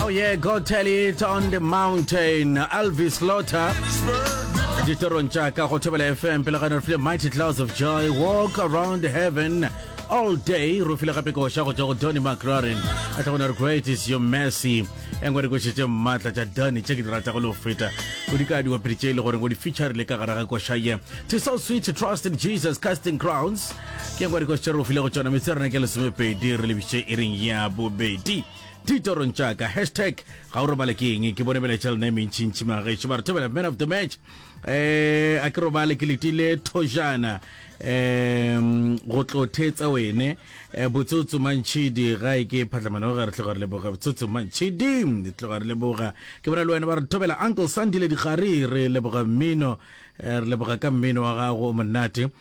Oh yeah, go tell it on the mountain. Elvis Slaughter. ditorong tša ka go thobela fm pele ga ne re file mighty clouds of joy walk around heaven all day re file gape koša go tšwa go donny mclaren a tla gona re great is your mercy e ngwe dikoša tše mmatla tša donny tše ke di rata go le go feta o di ka diwapedi tše e le gore go di featurile ka gare ga koša ye to so sweet to trust in jesus casting crowns ke e ngwe dikoša tše re go file go tšona metse rena ke lesomepedi re lebiše e reng ya bobedi ditorong tša ka hashtag ga o robale ke eng ke bone beletša lona e mentšintši magaešo ba re thobela man of the match um a ke robale ke letile thojana um go tlo thetsa wene eh, botsotso mantšhidi ga e ke phatlamana ga re tloga re leboga botsotso mantšhidi re tloga re leboga ke bona le wena ba re thobela uncle sandile dikgari re leboga mmino eh, re leboga ka mmino wa gago o monate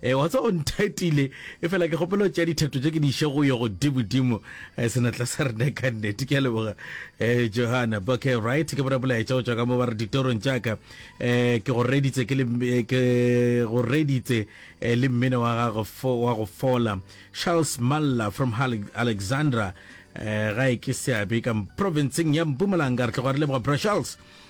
E, wa tsa o nthatile e fela ke kgopela go tšea dithetho tše ke di iše go yo godimodimo e, senatla sa rena ka nnete ke a leboga e, johana okay right ke bona bolaetša go tšwa ka mo ba re ditorong tšaka e, ke go reditse ke le e, ke go reditse e, le mmino wa gago fo- wa go fola charles malla from Hale- alexandra e, ga e ke seabe ka provinceng ya mpumalanga re tlogo re leboga bra charles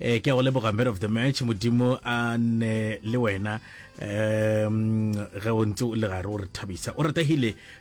Ee, ke a go leboga man of the match, Modimo a nne le wena um ge o ntse o le gare o re thabisa. O ratehile